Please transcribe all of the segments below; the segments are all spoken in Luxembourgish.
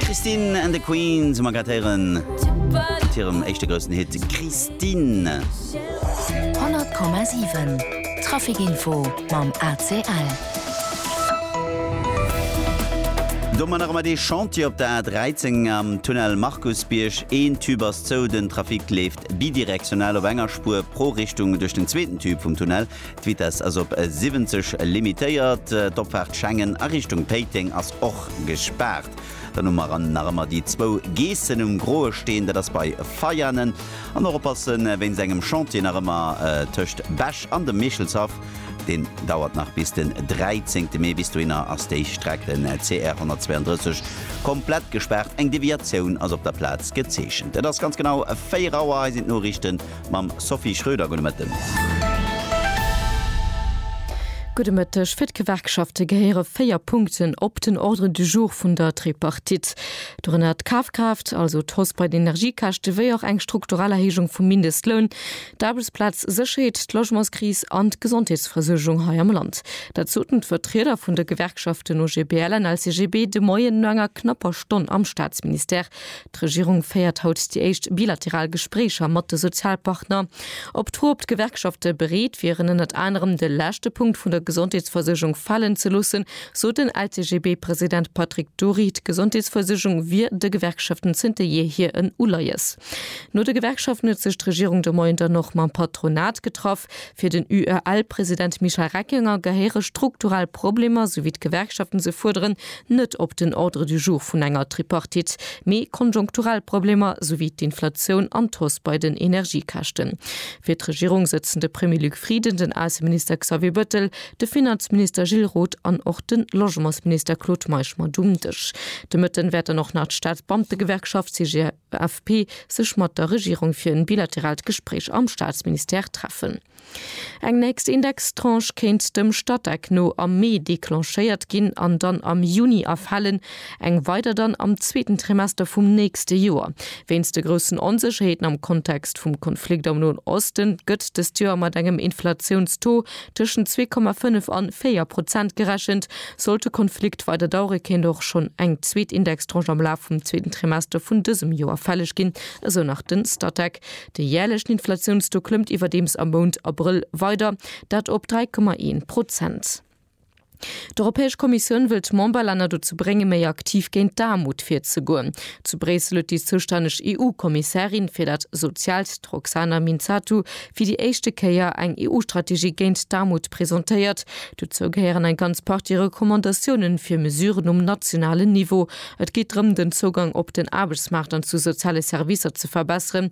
Christine and the Queens um Agrateieren mat hirem éischte groussen Hit Christine. 100,7 Trafikinfo mam ACL. Domadder mat ee Chantier op der A13 am Tunnel Markusbierg. Een Tube ass zou, den Trafic leeft bidirektional op enger Spuer pro Richtung duerch den zweeten Tube vum Tunnel. D'Vitess ass op 70 limitéiert. D'Opfaart Schengen a Richtung Péiteng ass och gespaart. Dann hu mer nach ëmmer déi zwou Geessen um Groe Steen, dat ass bei Veianen. An och oppasse wéinst engem Chantier nach ëmmer tëscht Bech an dem Meechelshaff. Deen dauert nach bis den 13 Mee. Bis dohinner ass déi Streck, den CR 132, komplett gespaart. Eng Deviatioun ass op der Plaz gezeechent. Et ass ganz genau 4 Auer. Hei sinn d'Noriichten. mam Sophie Schröder. Gudde Mëtten. Gudde Mëtteg. Fir d'Gewerkschafte gehéiere véier Punkten op den Ordre du jour vun der Tripartite. Dorënner d'Kafkraaft, also d'Hausse bei den Energiekäschte wéi och eng strukturell Erhéijung vum Mindestloun, d'Aarbechtsplazsécherheet, d'Logementskris an d'Gesondheetsversuergung hei am Land. Dat soten d'Vertrieder vun de Gewerkschaften OGBL an LCGB de Moien no enger knapper Stonn am Staatsministère. D'Regierung féiert haut déi éischt bilateral Gespréicher mat de Sozialpartner. Op d'Fro, ob d'Gewerkschafte bereet wieren, ënnert anerem de leschte Punkt vun der Gesondheetsversuergung falen ze loossen, sot den LCGB-President Patrick Dury, d'Gesondheetsversuergung wier de Gewerkschaften zënter jeehier en Uleies. No de Gewerkschaften huet sech d'Regierung de Moien dann och mam Patronat getraff. Fir den UEL-President Michel Reckinger gehéiere strukturell Problemer, esou wéi d'Gewerkschaften se fuerderen, net op den Ordre du jour vun enger Tripartite, mee konjunkturell Problemer, sou wéi d'Inflatioun an d'Hausse bei den Energiekäschten. Fir d'Regierung sëtzen de Premier Luc Frieden, den Ausseminister Xavier Bettel, de Finanzminister Gilles Roth an och de Logementsminister Claude Meisch mat um Dësch. De Mëtten wäert dann och nach d'Staatsbeamtegewerkschaft CGFP, AFP, sech mat der Regierung fir en bilateraalt Gespréich am Staatsministère treffen. Eng nächst Indextranche kéint dem Statec no am Mee declenchéiert ginn an dann am Juni erfalen, eng weider dann am zweeten Trimester vum nächste Joer. Wéinst de groussen Onsécherheeten am Kontext vum Konflikt am Noen Osten gëtt dëst Joer mat engem Inflatiouns-Taux Tëschent zwee Komma fënnef an véier Prozent gerechent, sollt de Konflikt weider dauere kéint och schonn eng zweet Indextranche am Laf vum zweeten Trimester vun dësem Joer fälleg ginn, esou nach den Statec. De jäerlechen Inflatiounstaux klëmmt iwwerdeems am Mount Abrëll weider, dat op dräi Komma een Prozent. D'Europäesch Kommissioun wëll d'Memberlänner dozou bréngen, méi aktiv géint d'Aarmut virzegoen. Zu Bréissel huet déi zoustänneg EU-Kommissärin fir dat Soziaalt, d'Roxana Minzatu, fir déi éischte Kéier eng EU-Strategie géint d'Aarmut presentéiert. Dozou gehéieren eng ganz Partie Recommandatioune fir Mesuren um nationalen Niveau. Et geet drëm, den Zougang op den Aarbechtsmaart an zu soziale Servicer ze verbesseren,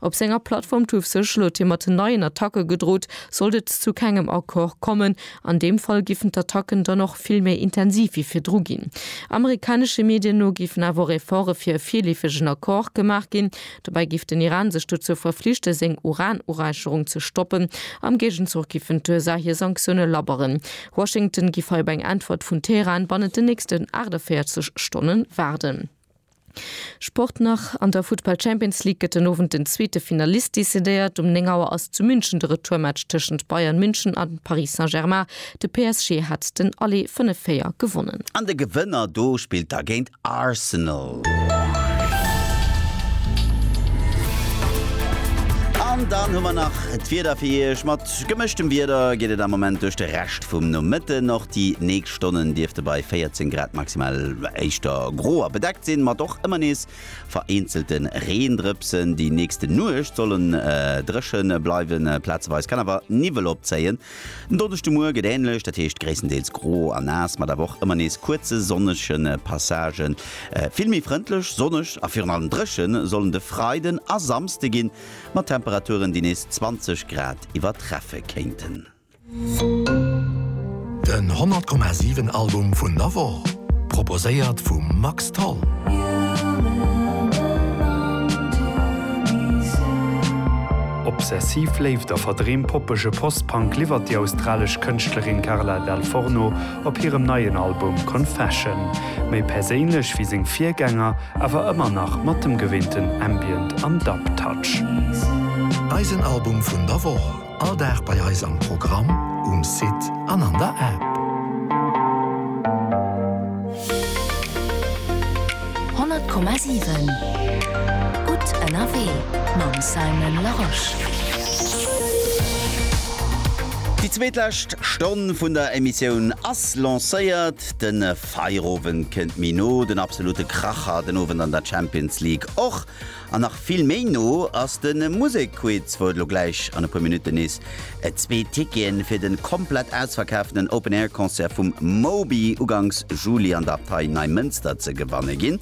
Op senger Plattform Truth Social huet hie mat neien Attacke gedrot, sollt et zu kengem Accord kommen. An deem Fall giffen d'Attacken dann och vill méi intensiv wéi virdru ginn. Amerikanesche Medien no giffen awer och Efforte fir e virleefegen Accord gemaach ginn. Dobäi giff den Iran sech dozou verflichte seng Uran-Uräicherung ze stoppen. Am Géigenzuch giffen d'USA hir Sanktioune labberen. Washington giff hei op eng Äntwert vun Teheran bannent den nächsten 48 Stonne waarden. Sport nach, An der Futtball Champions League gëtt den Owend den zweete Finalist decidéiert. Um 9 Auer ass zu München de Retourmatch tëschent Bayern München a Paris Saint-Germain. De PSG hat den Aller 5, 4 gewonnen. An de Gewënner do spillt da géint Arsenal. An dann hu mer nach d'Wieder fir Iech. Mat gemëschtem Wieder geet et am Moment duerch de Rescht vum Nomëtten. Och déi nächst. Stonnen dierfte bei 14 Grad maximal éischter gro a bedeckt sinn, mat och ëmmer nees vereenzelte Reendrëpsen. Déi nächste Nuecht solle dréche bleiwen, plazeweis kann awer Niwwel opzéien. Den Donneschdemoie gëtt änlech, dat heescht gréisstendeels gro a naass, mat awer och ëmmer nees kuerze sonnege Passagen. Vill méi frëndlech, sonneg a virun allem dréche sollen de Freiden a Samsde ginn, mat Temperaturen, déi nees 20 Grad iwwertreffe kéinten. Den 100 Komma 7 Album vun der Woch, proposéiert vum Max Tholl. Obsessiv Léift a verdreemt poppege Post-Punk liwwert déi australesch Kënschtlerin Carla Dal Forno op hirem neien Album Confession. Méi perséinlech wéi seng Virgänger, awer ëmmer nach mat dem geweenten Ambient an Dub-Touch. Eisen Album vun der Woch. All Dag bei eis am Programm, um Site an an der App. 100,7 Gutt ënnerwee mam Simon Larosche. Déi zweetlescht Stonn vun der Emissioun ass lancéiert. De Feierowend kënnt méi no, den absolute Kracher den Owend an der Champions League och. An nach vill méi no ass de Musekquiz, wou et elo gläich an e puer Minutten nees zwee Ticketen fir de komplett ausverkaaften Open Air Concert vum Moby ugangs Juli an der Abtei Neimënster ze gewanne ginn.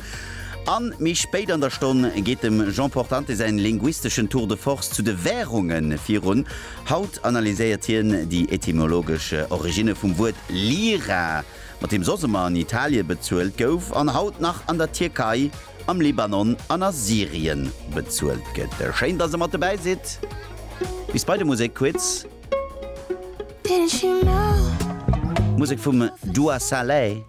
A méi spéit an der Stonn geet dem Jean Portante säin linguisteschen Tour de Force zu de Wärungen virun. Haut analyséiert hien déi etymologesch Originne vum Wuert Lira, mat deem soss ëmmer an Italie bezuelt gouf an haut nach an der Tierkei am Libanon an a Syrien bezuelt gëtt. Schéin dass der mat dobäi sidd. Bis bei de Musekquiz. Musek vum Dua Saleh.